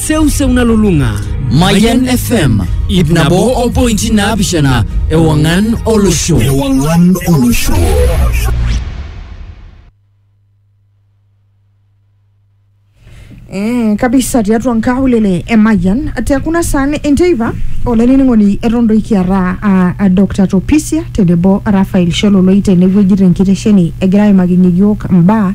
seuseu nalulung'a Mayan FM ip nabo o pointi naapishana ewang'an olosho. Ewang'an olosho. Eh, kabisa tiatua nkaulele emayian te kuna saan enteipa olainining'oni eton doi kiata ah, ah, Dr. Topisia tenebo Raphael Shololoi tenewueji tenkitesheni egira aimakinyie yiok mbaa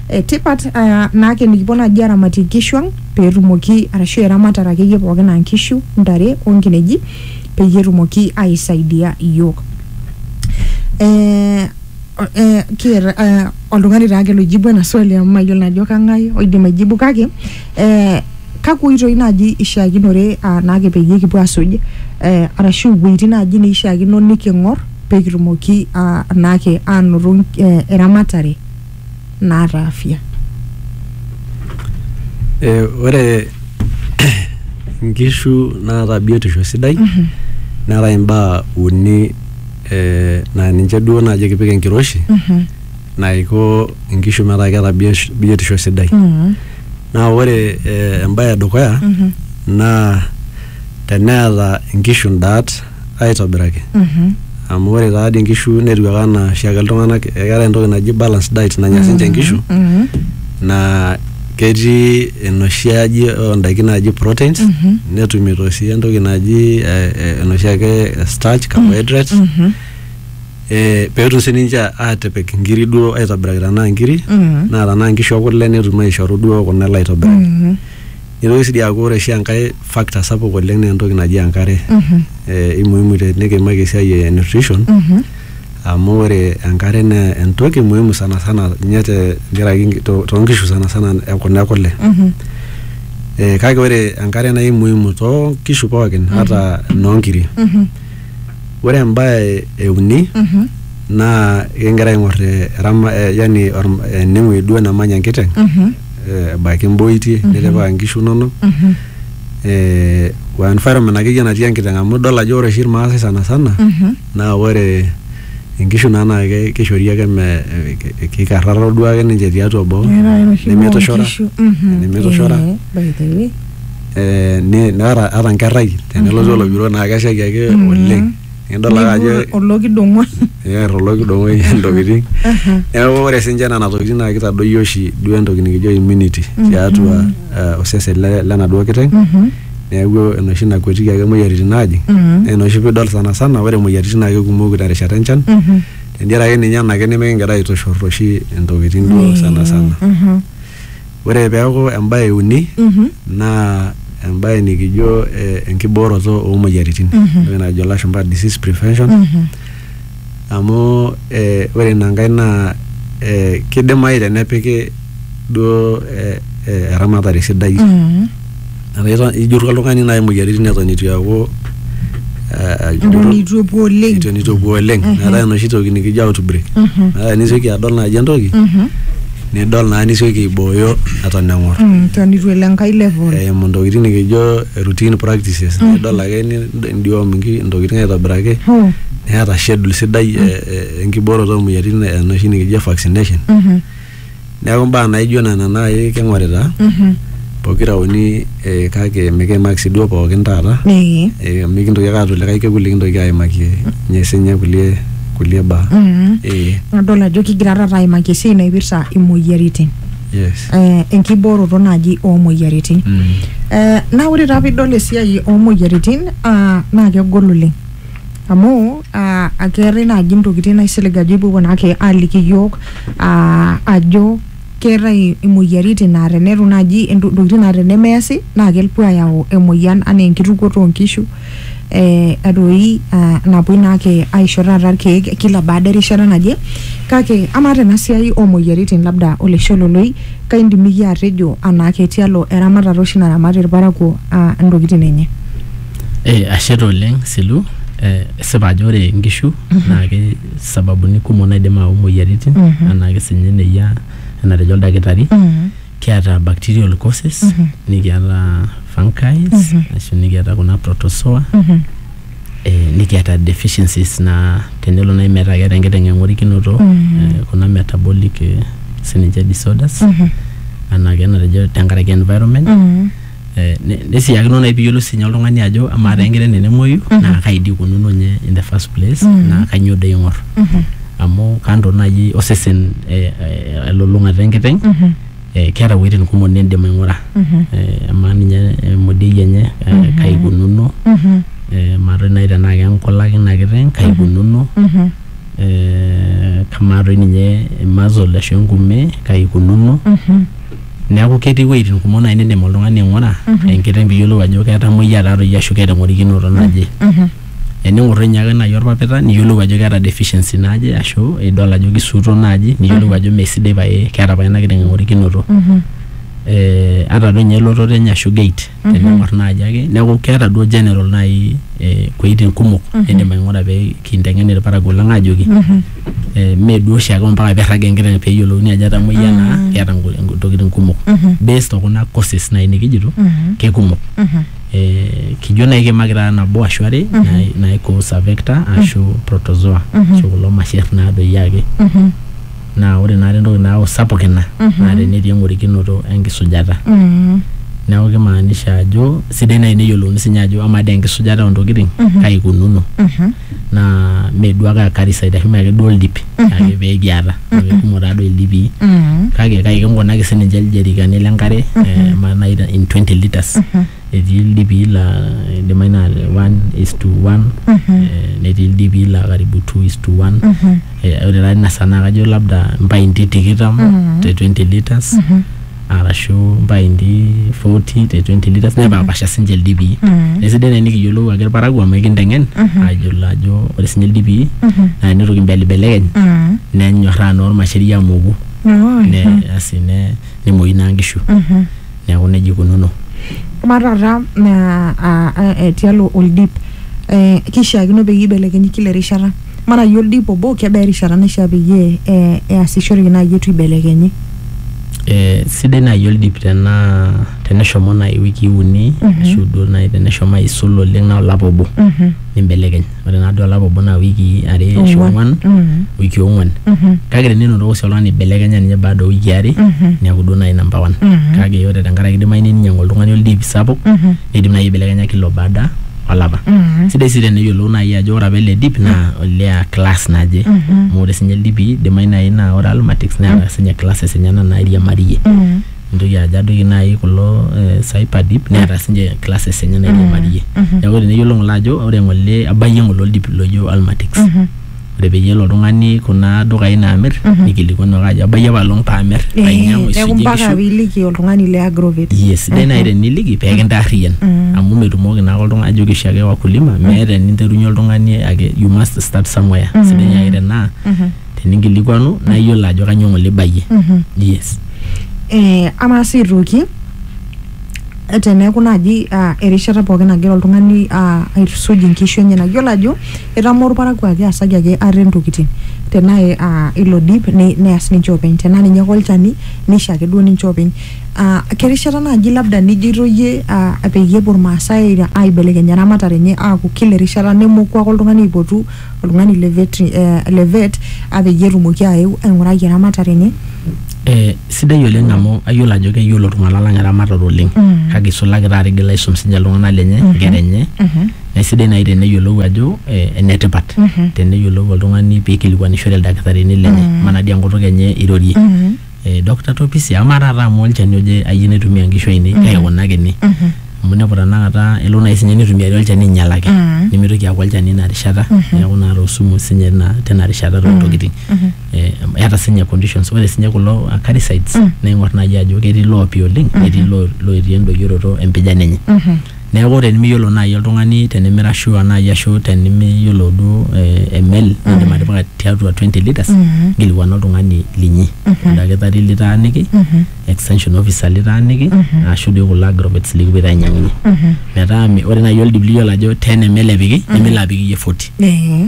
e tipat uh, naake nikipuo naaji aramatie inkishu ang petumoki arashu eramatare akeyie pookin aa nkishu ntare onkineji peyie etumoki aisaidia iyiok eh, eh, kieta eh, oltung'ani taake loijibu ena swali amu mayiolo ajo kang'ae oidim aijibu kake eh, kakwa oitoi naaji ishiakinore uh, naake peyie kipuo asuj eh, arashu iwueitin naaji neishiakino niking'or pekitumoki uh, naake anoto eh, eramatare naata afya. Ore nkishu naata biotisho sidai neetae imbaa uni naa ninche duo naaji kipik enkiroshi naiko nkishu metaa keeta biotisho sidai. Naa ore embae edukuya naa teneeta nkishu ndaat aitobiraki amu ore taa dii nkishu netiu ake anaa oshiake iltung'anak ekeetae entoki naji balance diet nanya sinche nkishu naa ketii enoshi aji ondaiki naaji proteins netumito sii entoki naji eh, eh, enoshi ake starch carbohydrates eh, peetum sininche atipik inkiri duo aitobiraki tenaa inkiri naa tenaa inkishu ekule netum aishoru duo kuna ele aitobiraki Nitoki sii aaku ore oshi enkae factor sapuk oleng naa entoki naji enkare eh, imuhimu te- nikiimaki esiai e nutrition amu ore enkare naa entoki muhimu sana sana ninye te nkaraki nki- to- toonkishu sana sana e kuna e kule eh, kake ore enkare naa imuhimu toonkishu pookin ata inoonkiri ore embae e uni naa ekingira aing'or eh, erama- eh, yani orm- enewueji duo namanya enkiteng eh, ebaiki imboitie nitipika inkishu inonok eh, o environment akeyie natii enkiteng amu idol ajo ore oshi irmaasai sana sana naa ore inkishu naa naa ke- kishori ake me eh, ke- kikarraro duo ake ninche tiatua boo Neetae enoshi nemeitushora moonkishu. Mhm. nemeitushora Eh, by the way. eh, ne- neata ata nkerrai tenelotu oloibiro naa keshaiki ake oleng Nidol ake ajo Neibur olokidong'oi. eer olokidong'oi intokitin. Neeku ore sinche nena tokitin naa kitadoyio oshi duo entoki nikijo immunity tiatua eh, osesen le- lenaduo kiteng. Neeku enoshi nakuetiki ake moyiaritin naajing. Naa ina oshi piidol sana sana ore moyiaritin naa kekumok terishata enchan. Tentiaraki ninye ena ake nimikigira aitushurr oshi intokitin duo sana sana. Ore peaku embae e uni naa embae nikijo eh, enkibooroto oo moyiaritin entoki najo ilashumpa disease prevention amu eh, ore ina nkae naa eh, kidimayu tenepiki duo eh, eh, eramatare sidai. ijuru oltungani nai moyiaritin eton itu eaku Eton itu epuo oleng. eton itu epuo oleng metaa enoshi toki nikijo outbreak metaa nisioki adol naji entoki nidol naa nisioki aibooyo eton engor Mm, Eton itu elo enkae level. eimu ntokitin nikijo routine practices nidol ake ni- nidiom inki- ntokitin aitobiraki Oh, neeta schedule sidai e- e- enkibooroto omoyiaritin enoshi nikijo vaccination Neeku mbaa naijo nena naaji king'orita Mhm. pokira uni eh, kake mikiimaki sii duo pookin taata Ee. eh, amu mikintoki ake aata likae kekun likintoki aimaki ninye sinye kulie kulie baa Mhm. eh, Nadol ajo kigira taata aimaki esiai naipirta imoyiaritin. yes Eh, enkibooroto naaji oomoyiaritin. Mm. Eh, naa ore taa piidol esiai oomoyiaritin ah, naa kegol oleng. amu ah, akeetae naaji ntokitin naisilig ajo ipuopuo naake aaliki iyiok ah, ajo keetae imoyiaritin naa tenetu naaji ento- ntokitin naa tenemeesi naa kepuo ayau emoyian anaa enkitukuoto oonkishu eh, doi ah, napuoi naake aisho taata irkeek kila baada erishata naje kake amaa tena siai oomoyiaritin labda oleshololoi kaindim iyie atejo anaake tialo eramatata oshi naramati irparakuo ah, intokitin enye Eh, ashe taa oleng Silu eh, esipa ajo ore inkishu naa ke sababuni kumok naidim aau imoyiaritin anaa kesinye eneyia enatejo oldakitari kiata bacterial causes nikiata fungus ashu nikiata kuna protozoa eh, nikiata deficiencies naa tenelo naaji metaa keeta enkiteng eng'orikinoto eh, kuna metabolic eh, sininche disorders anaa kenatejo tenkaraki environment Eh, ne- nesiyakino nai piyiolou sinye oltung'ani ajo amaa taa enkiteng tenemuoyu naa kai dii ikununo nye in the first place naa kanyio doi ing'or amu kando naaji osesen eh, eh, elulung'ata enkiteng eh, keeta iwuejitin kumok nindim aing'ura eh, amaa ninye emodiei enye eh, kai ikununo eh, amaa toi naaji tenaa kenkulak ina kiteng kai ikununo eh, kamaa toi ninye muscle ashu enkume kai ikununo Neaku ketii iwuejitin kumok naaji nindim oltung'ani aing'ura enkiteng piyiolou ajo ketamoyia taatoi ashu keeta eng'orikinoto naje. Ening'orr toi ninye ake naaji orpapita niyiolou ajo keeta deficiency naje ashu idol ajo kisuuto naaji niyiolou ajo mee sidai pae keeta pae ena kiteng eng'orikinoto. Ata toi ninye elototo enye ashu gait. tening'or naaji ake neeku keeta duo general naaji eh, kueitin kumok niindim aing'ura pee kinteng'en irparakuo lang aajoki eh, mee duo oshiake ompaka peirrag enkiteng peeyiolouni ajo etamoyia naa keeta nku- nku- ntokitin kumok based okuna courses naaji nikijito kekumok eh, kijo naaji kiimaki taata nabo ashu are nai- naikus avector ashu protozoa ashu kulo masher naa doi ake naa ore naata entoki naaku sapuk ina naa tenetii eng'orikinoto enkisujata neeku kimaanisha ajo sidai naaji neyiolouni sinye ajo amaa dee enkisujata ontokiting kai ikununo naa mee duo ake akariside ashu mee ake duo oldip ake pekiata amu kumok taa doi ildipii kake kai kinkunaki sininche iljerikani lenkare eh, amaa naaji te- in 20 litres etii ildipii laa idimayu naa le one is to one eh, netii ildipii laa karibu two is to one Eh, ore taa ina saa naa kajo labda impainti tikitam te 20 liters arashu impainti 40 te 20 liters nepaapasha sinche ildipii nesidai naa enikiyiolou ake irparakuo amu ekinteng'en ayiolo ajo ore sinye ildipii naa enitoki imbelibelekeny nenyorraa naa ormasheri amoku ne asi ne nemuoyu naa nkishu Neaku neijia eikununo. Amaa taata naa tialo oldip eh, keishiakino peyie eibelekenyi kila erishata? Amaa naaji oldip obo kebaa erishata naishia peyie eh, easishoreki naaji eitu eibelekenyi? Eh, sidai naaji oldip tenaa teneshomo naaji iwikii uni mm -hmm. ashu duo naaji teneshomo aisul oleng naa olapa obo mm. -hmm. nimbelekeny ore naa duo olapa obo naa wikii are ashu Ong'wan. ong'wan Mm. wiki ong'wan Mhm. kake tenenotoko sii oltung'ani eibelekenya ninye baada o wiki are Mhm. neeku duo naaji namba one Mhm. kake ore tenkaraki idimayu neninyiang'u oltung'ani oldip sapuk Mhm. neidim naaji aibelekenya kila baada olapa Mhm. sidai sii teneyiolou naaji ajo ore apa ele dip naa olea class naje Mhm. amu ore sinye ildipi idimayu naaji naa ore almatics neeta sinye classes enyena nairiamariyie Mhm. nintoki ajo adoyio naaji kulo eh, cyber deep neeta sinche classes enye nairiamarie neeku teneyiolo ng'ole ajo ore ng'ole abayie ng'ole oldip loijo Almatix ore peyie elo oltung'ani kuna dukai naamirr nikilikuanu ake ajo abayie apaelong paamirr Eh, ainyiang'u neeku aisujie mpaka inkishu piiliki oltung'ani le agrovet yes sidai naaji teniliki pee kintaarriyian amu metumoki naake oltung'ani ajoki oshiake wakulima meeta eninterunyie oltung'ani ake you must start somewhere sidai naaji tenaa teninkilikuanu naa iyiolo ajo kanyoo ng'ole ibayie Mhm. yes Eh, amaa sii aitoki eh, teneeku naaji ah, erishata pookin nagira oltung'ani ah, aitusuj inkishu enyenak yiolo ajo etamoo orparakuo ake asaki ake ate intokitin tenaa eh, ah, ilo dip ne- neas ninche openy tenaa ninye ake olchani nisho ake duo ninche openy Ah, kerishata naaji labda nijoito iyie ah, peyie epuo irmaasai aibelekeny eramatare enye aaku kila erishata nemoku ake oltung'ani aipotu oltung'ani le vetri- eh, le vet apeyie etumoki aeu aing'uraki eramatare enye Eh, sidai oleng amu ayiolo ajo keyiolo iltung'anak lang eramatare oleng Mm. kake isulaki taata igil aisum sinche iltung'anak lenye inkera enye Mhm. naisidai naaji teneyiolou ajo eh, enetipat Mhm. teneyiolou oltung'ani piikilikuanishore ildakitarini lenye Mm. manadi enkutuk enye irorie Mhm. eh, Dr. Topisia amaa taata amu olchani oje ayie naitumia nkishu ainei kake kuna ake ene amu inepu tanakata elo naaji sinye nitumiari olchani ainyialaki nimitoki aaku olchani ina rishata neeku naata osumu sinye ina tina rishata toontokiting Eh, eeta sinye conditions ore sinye kulo acaricides naing'or naaji ajo ketii loopi oleng netii loo- loirie endoyioroto empijan enye Neaku tenimiyiolo naaji oltung'ani tenimira sure naaji ashu tenimiyiolo duo eh, ml nindim atipika tiatua 20 litres nkilikuana oltung'ani linyi oldakitari litaaniki extension officer litaaniki ashu doi kulo agrovets likipuoito ainyiang'unyie metaa mi- ore naaji oldip liyiolo ajo 10 ml epiki nimilo apik iyie 40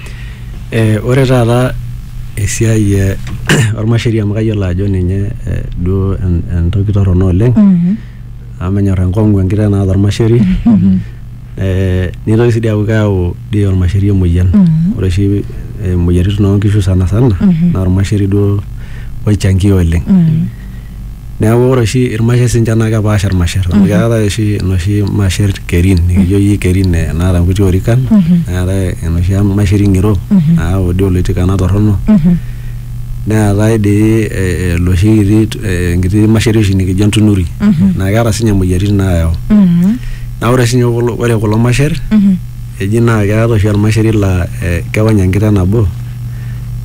Ore taata esiai ormasheri amu kayiolo ajo ninye duo entoki torrono oleng, amu menyor enkong'u enkiteng naata ormasheri, nitoki si di aku keeu di ormasheri emoyian. Ore oshi moyiaritin onkishu sanasana, na ormasheri duo oichangio oleng. Neeku ore oshi irmasher sinche naa kepaasha irmasher amu keetae oshi inoshi masher kerin nikijo iyie kerin eh, naata inkuti orikan neetae enoshi masher ing'iro nayau dii oloitikana torrono neetae dii eh, eh, loshi kiti eh, enkiti masheri oshi nikijo entunuri naa keeta sinye imoyiaritin nayau naa ore sinye kulo ore kulo masher eji naa keetae oshi ormasheri laa eh, kewony enkiteng nabo.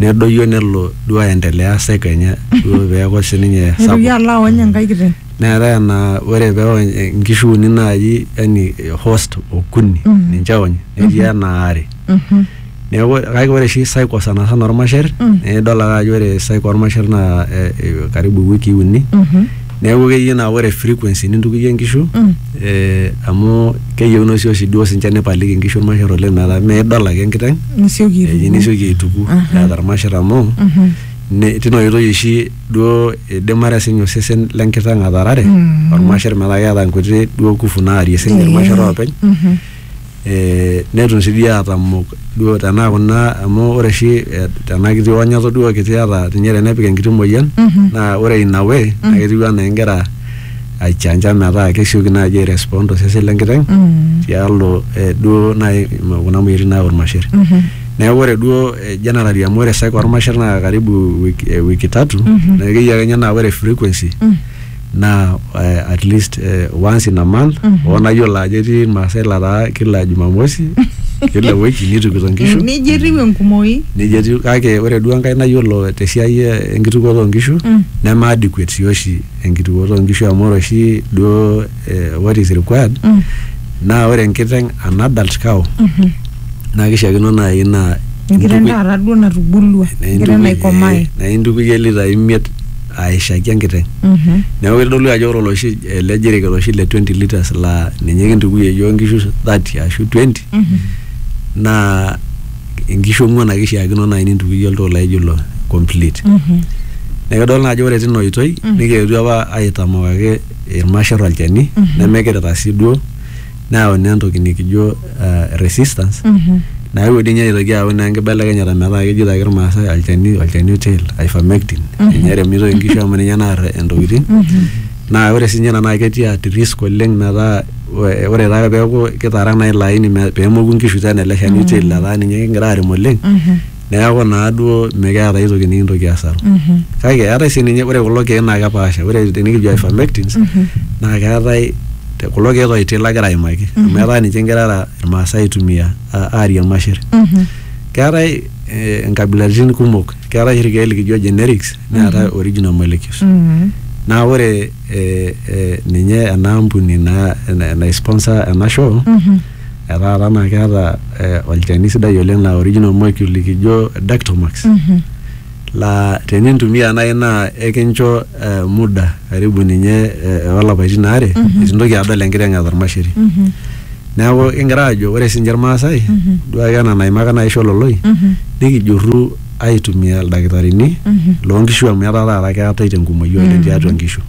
nedoyio nelo duo aendelea seko enye duo peeku sininye nitoki sapuk alo aony enkae kiteng neetae enaa ore peony eh, inkishu uni naaji yani eh, host okuni ninche eony netii enaa are Mhm. neeku ore- kake ore oshi cycle sanasana ormasher nidol ake ajo ore cycle ormasher naa eh, eh, karibu iwikii uni Mhm. Neeku keyieu naa ore frequency nintukuyie inkishu eh, amu keyieuno sii oshi duo sinche nipaliki inkishu irmasher oleng metaa midol ake enkiteng Nisioki eji aituku. nisioki aituku eeta irmasher amu ne- tina oitoi oshi duo idimare sinye osesen lenkiteng atarare ormasher metaa keeta nkuti duo kufu naarie sinye irmasher oopeny eh, netum sii dii atamok duo tenaa kuna amu ore oshi eh, tena kiti onyato duo kiti ata ninye tenepik enkiti moyian naa ore ina way naa ketiu anaa ingira aichanja metaa kesioki naaji airespond tosesen lenkiteng tialo eh, duo naaji kuna moyiaritin nayau irmasher neeku ore duo eh, generally amu ore sake ormasher naa karibu wiki, eh, wiki tatu naa keyiakenya naa ore frequency naa eh, at least eh, once in a month oo nayiolo ajo etii irmaasai lataa kila jumamosi kila wiki nitukito nkishu neji etiu enkumoi neji etiu kake ore duo enkae nayiolo tesiai eh, enkitukuoto oonkishu neme adequate sii oshi enkitukuoto oonkishu amu ore oshi duo eh, what is required naa ore enkiteng an adult cow naa kishiakino naaji naa enkiteng intukui- taata duo natubulua enkiteng naikomai naintukuyie litai imiet aishaki enkiteng neeku kitodolu ajo ore oloshi ele jiriket oshi le 20 liters laa ninye kintukuyie iyiook inkishu 30 ashu 20 naa inkishu ong'uan ake ishiakino naaji nintukuyie oltoo laijo ilo complete neeku idol naa ajo ore tina oitoi nikietuo apa aitamok ake irmasher olchani nemekirirra sii duo neyau naa entoki nikijo uh, resistance mm -hmm. nayewuo dii ninye aitoki ayau naa enkibelekenyata metaa kejito ake irmaasai olchani olchani otel ivermectin mm -hmm. ninye eremitoi inkishu amu ninye naar intokitin mm -hmm. naa ore sinye ina naa ketii at risk oleng metaa ore taa peeku kitaara naa ilo aini peemoku inkishu tena ele shani otel mm -hmm. letaa ninye kingira arem oleng mm -hmm. neeku naa duo mikiata ai toki nikintoki asaru kake eetae sii ninye ore kulo keek naa kepaasha ore tenikijo ivermectins naa keetae te- kulo keek toiti lagira aimaki amu etaa ninche ingira ara irmaasai aitumia a- aarie irmasher keetae eh, inkabilaritin kumok keetae oshi irkeek likijo generics neetae original molecules naa ore eh, eh, ninye ena ampuni naa naisponsor ena show etaa taa naa keeta eh, olchani sidai oleng laa original molecule likijo Dactomax laa tenintumia naaji naa ekincho eh, muda karibu ninye eh, olapaitin aare eitu intoki adol enkiteng eeta ormasheri neeku kingira aajo ore sinche irmaasai duake ena naimaka naaji Shololoi nikijurru aitumia ildakitarini loo nkishu amu etaa taata keetae tenkumoi oleng tiatua nkishu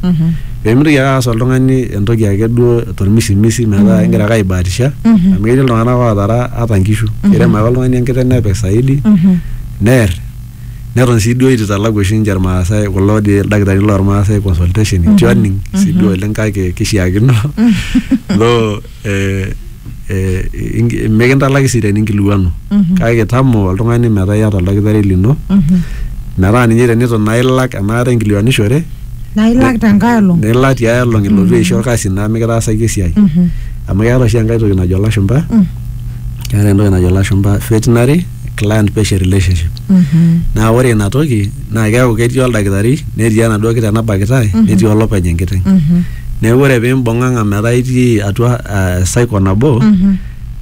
pemitoki ake aas oltung'ani entoki ake duo tormisimisi metaa ingira ake aibatisha amu ketii iltung'anak otara ata nkishu kirem ake oltung'ani enkiteng nepik saidi nerr neton sii duo itu italaku oshi inche irmaasae kulo dii ildakitarini lormaasae consultation itu aning sii duo oleng kake kishiakino loo. eh, eh, inki- mikintalaki sii teninkiliwanu kake kitamo oltung'ani metaa iyata oldakitari lino metaa ninye tenito naa ilak enaata inkiliwanishore naa ilak tenkae olong nilak tiae olong ilotu aisho orkasi naa mikitaasaki esiai amu keeta oshi enkae toki najo ilashumba keeta entoki najo ilashumba veterinary client patient relationship naa ore ina toki naa keeku ketii oldakitari netii enaduo kiteng nabakitae netii olopeny enkiteng neeku ore pimbung'ang'a metaa itii atua eh, cycle nabo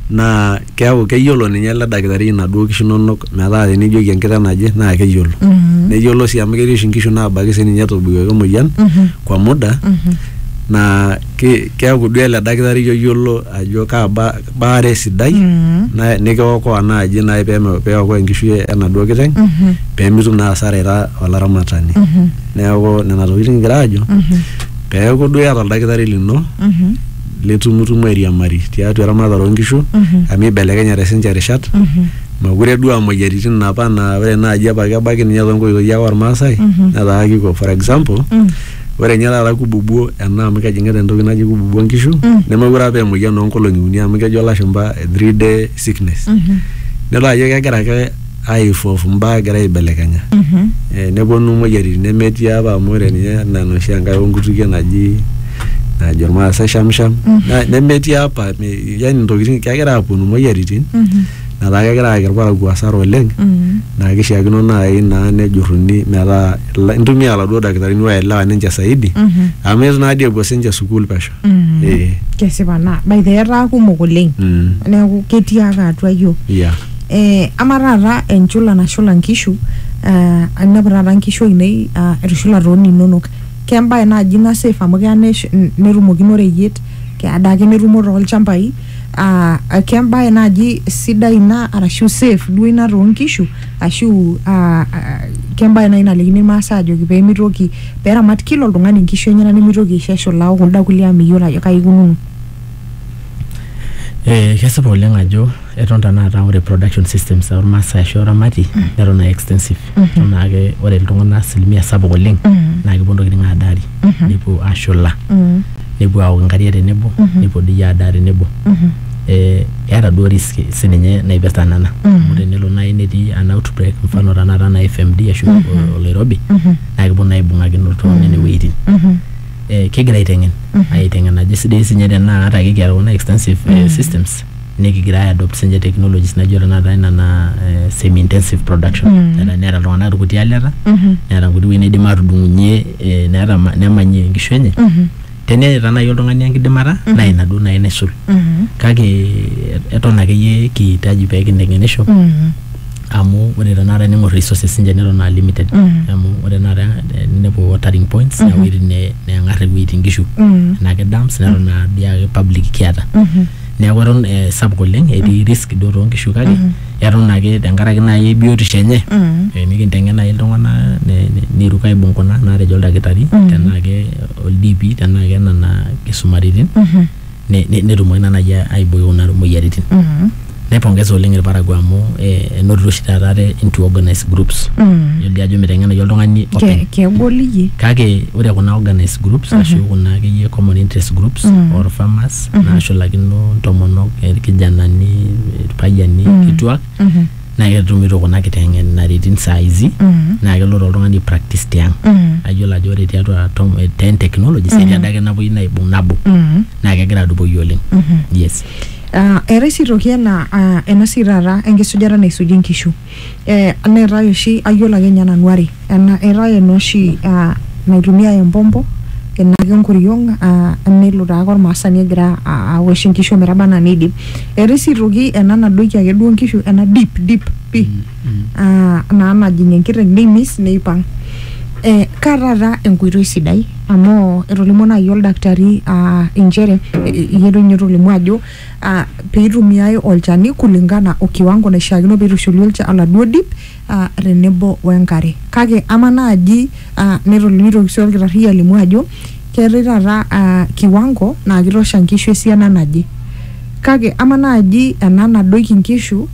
naa keeku keyiolo ninye ele dakitari inaduo kishu inonok metaa tenijoki enkiteng naje naa keyiolo neyiolo sii amu ketii oshi inkishu nabaki sininye etobikoki emoyian kwa muda naa ki- keaku duo ele dakitari oyiolo ajo kaa ba- baare sidai na- nikiokoa naaji naai peme- peokoa enkishui enaduo kiteng pemitum naa asara ira olaramatani neeku nena tokitin kigira aajo peeku duo iyata oldakitari lino litumutumu airiamari tiatua eramatare onkishu amu ibelekenyate sinche irishat mokure duo aa moyiaritin inapa naa ore naaji apa kebaki ninye tonkoitoi ake ormaasai netaa kiko for example Ore ninye taata kububuo ena amu kejing'ita entoki naji kububuo nkishu mm. nemekure apa emoyian oonkolong'i uni amu kejo lashumba three day sickness mm -hmm. nidol ajo kegira ake aifov mbaa egira aibelekenya mm -hmm. e, neponu moyiaritin nemetii apa amu ore ninye enaa enoshi enkae onkutukie naji najo irmaasai shamsham mm -hmm. nemetii apa yani ntokitin kegira aponu moyiaritin mm -hmm. metaa kegira ayaki irparakuo asara oleng naa kishiakino naaji naa nejuruni metaa ila- intumia iladuo dakitarini oelewa ninche saidi amu itu naadii epuo sinche sukuul pesho Eh, kesipa naa by the way, etaa kumok oleng mm, neeku ketii ake atua yiok yeah. eh, ama taata enchula nashula nkishu eh, ainepu taata nkishu ainei ah, etushulate oninonok kembae naaji ina safe amu keya nesh- n- netumokino oreyiet keya adaake netumo tolchambai uh, kembae naaji sidai ina arashu safe duo ina toonkishu ashu uh, uh, kembae naaji nalikini irmaasai ajoki peemitoki peramat kila oltung'ani inkishu enyenak nemitoki aisho eshula okunda kulie amu meyiolo ajo kai ikununo Eh, kesipa oleng ajo eton tanakata ore production systems ormaasai ashu oramati neton aa extensive eton naake ore iltung'anak asilimia sapuk oleng naa kepuo ntokitin adaari nepuo ashula nepuo aok inkariak tenebo nepuo doi adaa tenebo eh, eeta duo risk sininye naipirta nena amu tenelo naaji netii an outbreak mfano tanakata na FMD ashu o- oloirobi naa kepuo naa aibung'akino iltung'anak nene wuejitin eh, kegira aiteng'en aiteng'en ajo sidai sinye tenaa ata ake kiata kuna extensive eh, systems nikigira ai adopt sinche technologies naijo tenakata ina naa eh, semi intensive production Mm. Neeta- neeta iltung'anak irkuti aleta Mhm. neeta nkuti wuejitin naidim atudung'unyie eh, neeta ma- nemanyie inkishu enye Mhm. teneeta naaji oltung'ani enkidimata naa ina duo naaji naisul Mhm. kake eh, eton akeyie kiitaji pee kinteng'enisho Mhm. amu ore tenakata ning'or resources sinche neton aa limited Mhm. amu ore tenakata eh, ninepu watering points Mhm. ewuejitin ne- neng'ar ewuejitin inkishu Mhm. enake dams neton aa biake public kiata Mhm. neeku eton eh, sapuk oleng etii risk duo toonkishu kake eton ake tenkaraki naaji biotisho enye eh, nikinteng'en naaji iltung'anak ne- ne- neiruk aibung kuna naatejo oldakitari tenaa ke oldipi tenaa ke nena kisumaritin ne- ne- netumoki naa naaji aiboi kuna moyiaritin naipongeza oleng irparakuo amu eh, enotito oshi taata ate into organized groups yiolo ajo miteng'enayu oltung'ani openy kegol iyie kake ore kuna organized groups ashu kuna akeyie common interest groups or farmers nashulakino ntomonok irkijanani irpayiani kituak naa ketumito kuna kiteng'enaritin saa hizi naa kelo taa oltung'ani practice tiang ayiolo ajo ore tiatua tom- eh, ten technologies etii adake napuoi naibung nabo naa kegira adupoyu oleng yes Ah, eetae sii toki ena ah, ena sii taata enkisujata naisuji nkishu Eh, neetae oshi ayiolo ake ninye nanu are ena eetae ena oshi uh, naitumiae empompo ina ake enkoriong uh, nelo taake ormaasani egira a- awosh inkishu ometaba anaa neidip eetae sii aitoki ena nadoiki ake duo inkishu ena deep deep pi uh, naa najing enkiteng neimis neipang eh, kaa taata enkoitoi sidai amu etolimuo naaji oldakitari uh, inchere eh, iyie doi ninye otolimuo ajo aa peitumiae olchani kulingana o kiwango naishiakino peitushuli olcha oladuo dip aa tenebo we nkare. Kake ama naaji aa neton neitoki sii olkitarri alimu ajo keetae taata aa kiwango naa keitosha nkishu esiana naje. Kake ama naaji ena nadoiki nkishu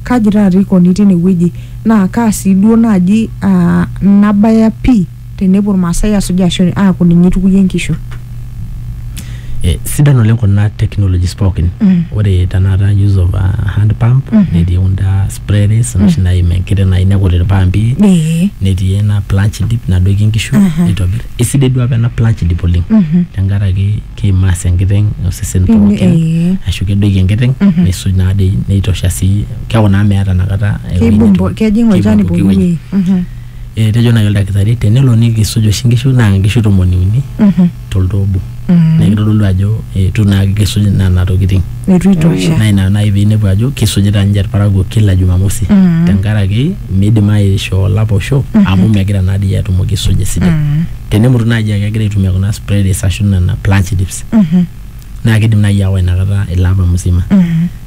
kaji taata eikoni teine wueji naa kaa sii duo naaji aa nabaya pii. tenepuo irmaasai asuj ashu aaku ninye itukuyie nkishu Eh, sidan oleng kuna technologies pookin Mm. ore tenakata use of uh, hand pump Mhm. netii kunda sprays noshi naim enkiti nai nekut irpampi ee netii ena planch dip nadoiki inkishu Aha. nitobir isidai duo apa ena planch dip oleng Mhm. tenkaraki keimaas enkiteng osesen Pimi- pookin ee. ashu kedoiki enkiteng Mhm. nisuj naadei neitosha sii keeku naa meeta inakata ewueji keibumbo netum- kejing olchani keibumbu pooki kewueji. wueji Mhm. etejo naaji oldakitari tenelo nikisuj oshi nkishu naa nkishu tomoni uni Mhm. toltoo obo Mhm. naa kitodolu ajo eitu naa kisuj nena tokiting Eitu itosha. naa ina naaji piinepu ajo kisujita ninche irparakuo kila jumamosi Mhm. tenkaraki miidim aishoo olapa osho amu megira naa dii atumoki aisuja esidai Mhm. tenemutu naaji aa kegira aitumia kuna spreads ashu nena plungetives Mhm. naa kidim naaji aawa inakata ilo apa musima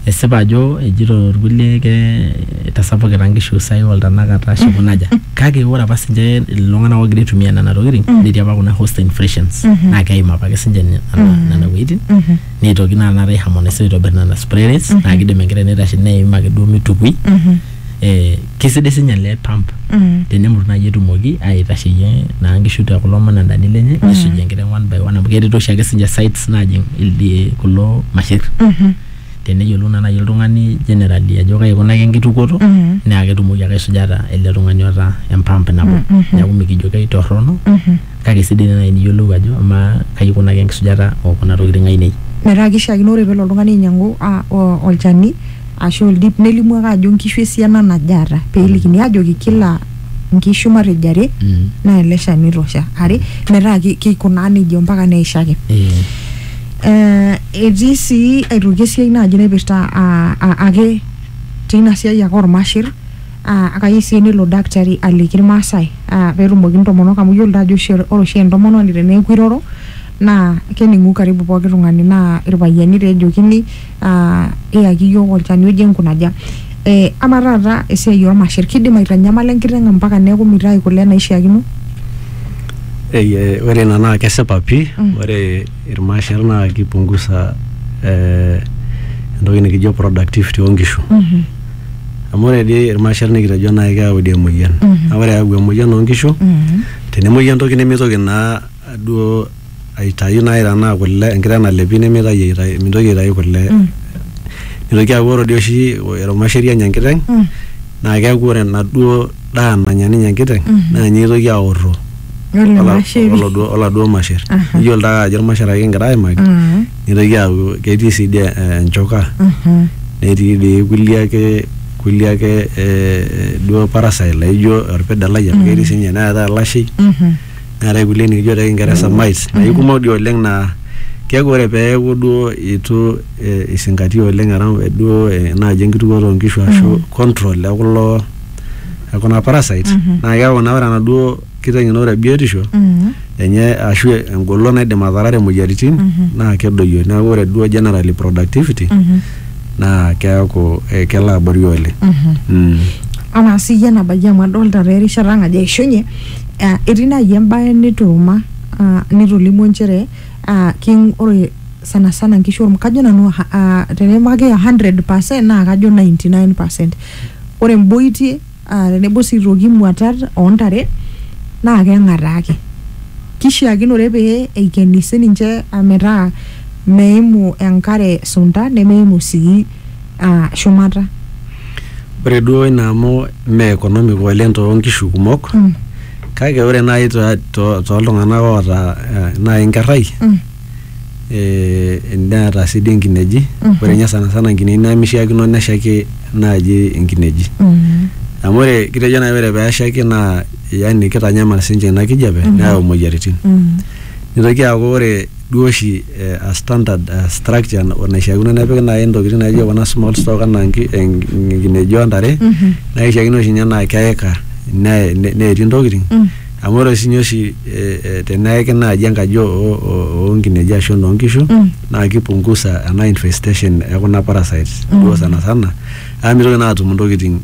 esipa ajo ejito irkulie ke itasapukita nkishu sai oltanakata ashu kunaja kake ore apa sinche iltung'anak ogira aitumia nena tokiting netii apa kuna host infections naa keim apake sinche nena nena wuejitin neitoki naa taata aiharmonise aitobirr nena spray rates naa kidim enkerai naitashe neim ake duo mitukui eh, Kisidai sinye ele pump Mm. tenemut naaji etumoki aitasheyie naa nkishu te kulo manandani lenye nisuj enkiteng one by one amu ketii oshiake sinche sites naajing ildi kulo masher Mhm. teneyiolou naa naaji oltung'ani generally ajo kai ikunaki enkitukuoto Mhm. naa ketumoki ake aisujata ele tung'ani oota empamp nabo Mhm. neeku mikijo keitorrono Mhm. kake sidai naa naaji niyiolou ajo amaa kai ikunaki enkisujata okuna tokiting ainei Metaa kishiakino ore pelo oltung'ani ainyiang'u ah, o- olchani ashu oldip nelimu ake ajo nkishu esiana naje aata pee elikini aajoki kila nkishu matejo are Mm. naa ele shani oitosha are metaa ki- kikunaa nejia ompaka neisho ake. Eh, Eh, etii sii aitoki esiai naaji naipirta ah, ah, ake teina siai ake ormashir ah, akayieu sii nelo dakitari aliki irmaasai ah, peetumoki intomonok amu iyiolo taa ajo oshi ore oshi entomononi teneeku iroro naa kening'u karibu pooki tung'ani naa irpayiani taa ejokini aa iyaki iyiook olchani oje nkunaja. Ee ama taata esiai ormasher kidim aitanyamala enkiteng mpaka neeku mitayu kule naishiakino? Eye, ore ina naa kesipa pii mm. Ore irmasher naa kipungusa eh, entoki nikijo productivity oonkishu mm -hmm. Amu ore dii irmasher nikitejo naaji keyau dii emoyian mm -hmm. Naa ore eyau emoyian oonkishu mm -hmm. Tenemuoyu entoki nemeitoki naa duo aitayu naaji tenaa kule enkiteng nalepi nemeitayu aitayu mintoki aitayu kule nitoki aaku ore dii oshi erumasheri enya enkiteng naa keeku ore enaduo daa nanya ninye enkiteng naa ninye itoki aorro Ole ola- masheri. oladuo- oladuo masher iyiolo taa ajo irmasher ake kingira aimaki Mm. nitoki aaku ketii sii dii eh, enchoka Mhm. netii dii kulie ake kulie ake eh, duo parasite laijo orpidalai amu ketii sinye neetae olashei Mhm. neetae kulie nikijo te kingeresa mice naa ikumok dii oleng naa keeku ore peeku duo itu eh, isingatia oleng around eh, duo eh, naaji enkitukuoto oonkishu ashu control ekulo ekuna parasite naa keeku naa ore enaduo kiteng ino ore biotisho Mm. enye ashu engolon naidim atarare imoyiaritin naa kedoyio neeku ore duo generally productivity Mhm. naa keeku eh, kelo abori oleng Mhm. Mm. anaa siyie enabayie amu adolta taa erishata ang ajo eishunye Ah, etii naaji embae nituuma ah, nitolimuo nchere ah, king ore sana sana nkishu orm- kajo nanu ha- ah, tenipikaki 100 naa kajo 99 ore mboitie ah, tenebo sii aitoki muatat oontare naa keng'ataa ake kishiakinore pee eikeni sininche ah, metaa meimu enkare sunta nemeimu sii aa shumata. Ore duo ina amu mme economic oleng too nkishu kumok mm. kake ore naaji tooltung'anak to, oota eh, naaji inkerrai mm. eh, neeta sii dii inkineji mm -hmm. ore ninye sanasana inkineji nemishiakino neshaiki naaji inkineji mm -hmm. amu ore kitejo naaji ore peeshaiki naa yani kitanyamal sinche ina kijape mm -hmm. neyau imoyiaritin mm -hmm. nitoki aaku ore duo oshi a standard structure naishiakino nepiki nai ntokitin naijo kuna small stock anaa nki- en- nkineji o ntare naa kishiakino oshi ninye naa keika ne- ne- neeti ntokitin amu ore sinye oshi eh, eh, teneeki naaji enkaji o- o- o nkineji ashu enoo nkishu naa kipungusa ena infestation e kuna parasites duo sana sana amu mitoki naa atum ntokitin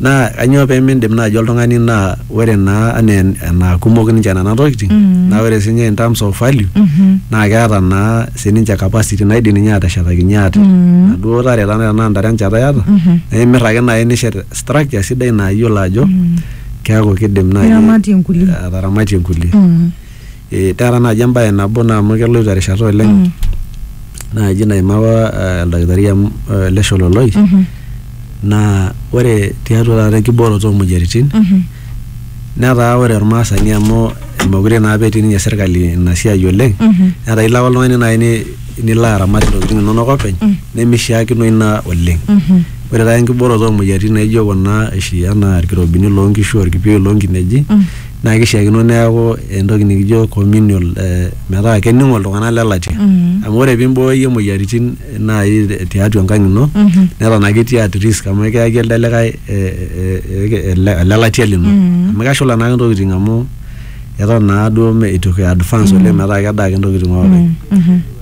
Naa kanyoo pee miindim naaji oltung'ani naa ore naa anaa enaa kumok ninche nena tokiting naa ore siinye in terms of value naa keeta naa sininche capacity naidim ninye aateshetakinyie ate inaduo tare ata tenaa intare enchata iyata naa imirr ake naai nishet structure sidai naa iyiolo ajo keeku kiidim naai ataramatie inkulie. Eh, taata naaji embae nabo naa amu keloito erishata oleng Mm. naaji naimaka eh, oldakitari amu eh, ele shololoi Mhm. naa ore tiatua taata enkibooroto oomoyiaritin Mhm. netaa ore ormaasani amu mekure naa apa etii ninye serkali ina siai oleng Mhm. netaa ilo ake oltung'ani naaji ni- nilo aramat intokitin inonok openy Mm. nemishiakino ina oleng Mhm. ore taata enkibooroto oomoyiaritin naijo kuna oshi anaa irkirobini loonkishu orkipieu loonkineji Mm. naa kishiakino neeku entoki nikijo communal eh, metaa kening'o iltung'anak le latia amu ore pimbooyo iyie moyiaritin eh, naai te- tiatua enkang ino neton ake itii at risk amu ekiyaki elde likae eh, eh, eh, ele ele latia lino amu keshula naake intokiting amu eton naa duo me- itu ki advance oleng metaa kedaa ake intokiting openy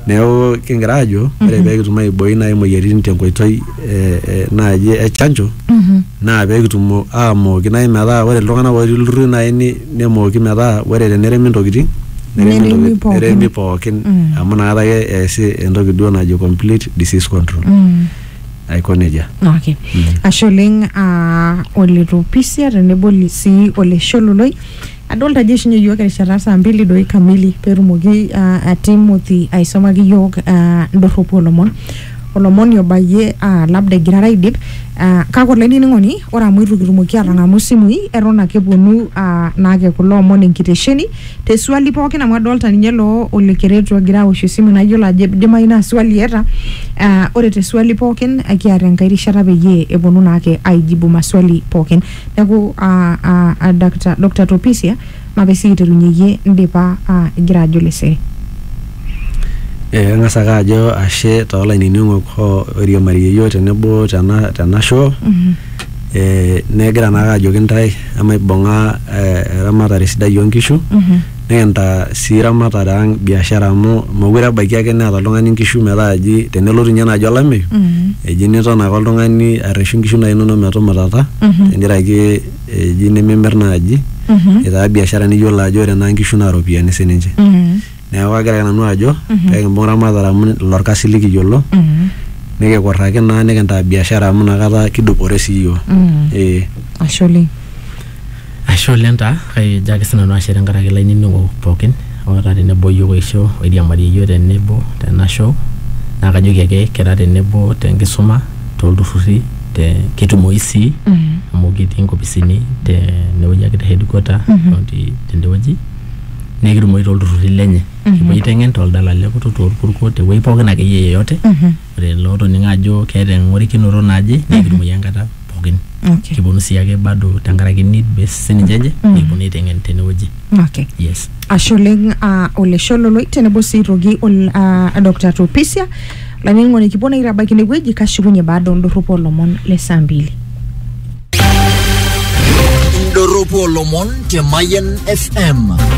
Neeku kingira aajo ore pee kitum aaibooi naaji imoyiaritin tenkoitoi eh, eh, naaji e chanjo naa pee kitum aamooki naaji metaa ore iltung'anak ootii ilturruri naaji ni- nemooki metaa ore teneremi intokitin neremi Neremi intokitin- pookin. neremi pookin amu inakata ake eesi entoki duo najo complete disease control aiko nejia. Okay. Ashe oleng ah, ole Topisia tenebo li- sii ole Shololoi Adolta ajo ishunye yiok erishata saa mbili doi kamili petumoki uh, Timothy aisomaki yiok uh, ndorropu olomon olomoni obayie uh, labda egirara aidip uh, kake olainining'oni ore amu itu kitumoki atang'amu isimui eton ake eponu uh, naake kulo omon enkitesheni te swali pookin amu adolta ninye loo ole keretu egira awosh esimu nayiolo ajo idimai naa swali eeta uh, ore te swali pookin ekiata enkae rishata peyie eponu naake aijibu maswali pookin Neaku aa Dakta Doctor Topisia mape sii aiterunye iyie indipa aa igira ajo lesere. Ee kang'as ake ajo ashe too lainining'ok oiriamariyie iyiook tenebo tena tena show ee nagira naake ajoki intae emaibung'a ee eramatare sidai oo nkishu Nekintaa sii ramatare ang biashara amu mokure ebaiki ake neeta oltung'ani inkishu metaa eji tenelotu ninye naaji olameyu eji niton ake oltung'ani arreshu inkishu naaji inonok metumutata tenkaraki eji nimimirr naaji eitaa biashara niyiolo ajo ore naa inkishu naa iropiyiani sininche neeku kagira ake nanu ajo pekimbung ramatare amu ilo orkasi likiyiolo nikikurraki naa nikintaa biashara amu inakata kidupore sii iyiok eh. Ashe oleng taa kajo ake sinanu ashe tenkaraki lainining'ok pookin otaa tenebo iyiok oisho oiriamarie iyiok tenebo tena show naa kajoki ake kira tenebo tenkisuma tolturrurri te ketumoyu sii amu ketii inkopisini tenewueji ake te headquarter county tendewueji nekitumoyu tolturrurri lenye kipuo aiteng'en toldala lekutuk torkuko tewueji pookin akeyie yeyote ore lootoning'o ajo keeta eng'orikinoto naje naa kitumoi enkata pookin okay kiponu sii ake bado tenkaraki need based sininche enye nikiponu aiteng'en tenewueji okay yes ashe oleng ah, olesho loloi tenebo sii aitoki ol- ah, Dr. Topisia olainining'oni kipuo naa aitabaiki inewueji kashukunye baada ondorropu olomon le saa mbili indorropu olomon te Mayian FM.